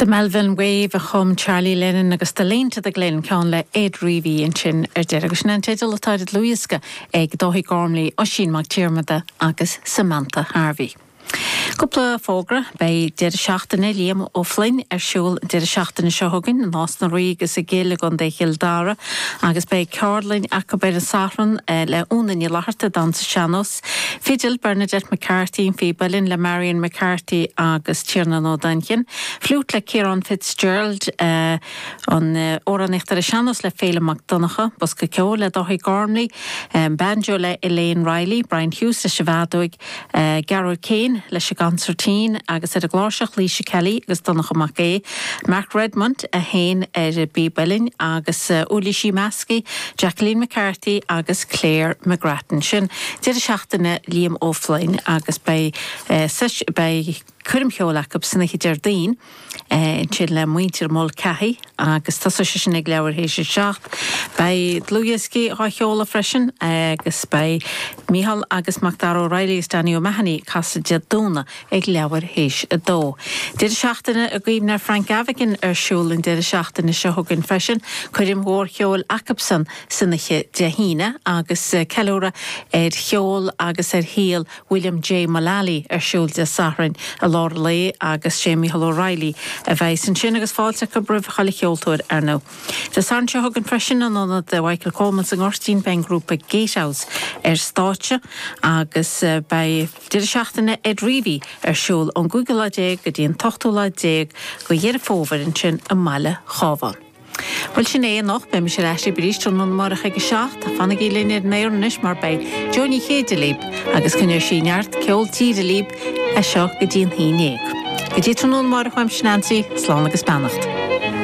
The Melvin Wave a chum Charlie Lennon agus The Lane to the Glen ceann le Ed Reavy ansin ar deireadh agus sin an teideal atá ar an dlúthdhiosca ag Dáithí Gormley, Oisín Mac Diarmada agus Samantha Harvey. Cúpla fógra, Beidh Deireadh Seachtaine Liam Ó Floinn ar siúl an deireadh seachtaine seo chugainn in Nás na Ríogh agus i gCill i gContae Chill Dara agus beidh ceardlainn acu ar an Satharn le Úna Ní Fhlatharta, damhsa sean-nóis. Fidil, Bernadette McCarthy, an phíb uilleann le Marion McCarthy agus Tiarnán Ó Duinnchinn, Fliúit le Ciarán Fitzgerald, amhránaíocht ar an sean-nós le Féilim Mac Donncha, Bosca Ceoil le Dáithí Gormley, Banjo le Elaine Reilly, Brian Hughes leis an bhfeadóig, Gearóid Keane leis an gconsairtín agus ar an gcláirseach, Laoise Kelly agus Donncha Mac Aodha, Mark Redmond a sheinn ar an bpíb uilleann agus uirlisí meas, Jacqueline McCarthy agus Claire McGrattan. Sin deireadh seachtaine Liam Ó Floinn agus beidh beidh coirm cheoil acu san oíche Déardaoin ansin le muintir Mulcahy agus tosóidh sé sin ag leathuair théis a seacht. Beidh dlúthdhioscaí á sheoladh freisin agus beidh Micheál agus MacDara Ó Raghallaigh agus Danny O'Mahony ag casadh Dé Domhnaigh. ag leathuair théis a dó. Deireadh seachtaine i gcuimhne ar Frank Gavigan ar siúl an deireadh seachtaine seo chugainn freisin, coirm mhór cheoil acusan san oíche Dé hAoine agus ceiliúradh ar cheol agus ar shaol William J. Mullaly ar siúl Dé Sathairn i lár an lae agus sé Micheál Ó Raghallaigh a bheidhs ansin agus fáilte acu roimh chuile cheoltóir ar ndóigh. Dé Sathairn seo chugainn freisin in Ionad Mhichael Coleman sa nGoirtín beidh an grúpa Gatehouse ar stáitse agus beidh. Deireadh seachtaine Ed Reavy ar siúl ón gcúigiú lá déag go dtí an t-ochtú lá déag go Dheireadh Fómhair ansin i mbaile an Chabháin. Bhuel sin é anocht, beidh mise ar ais libh arís tráthnóna amárach ag a seacht. Fanaigí linn ar an aer anois mar beidh Jo Ní Chéide libh agus coinneoidh sí neart ceol tíre libh as seo go dtí an haon déag. Go dtí tráthnóna amárach uaimse Neansaí, slán agus beannacht.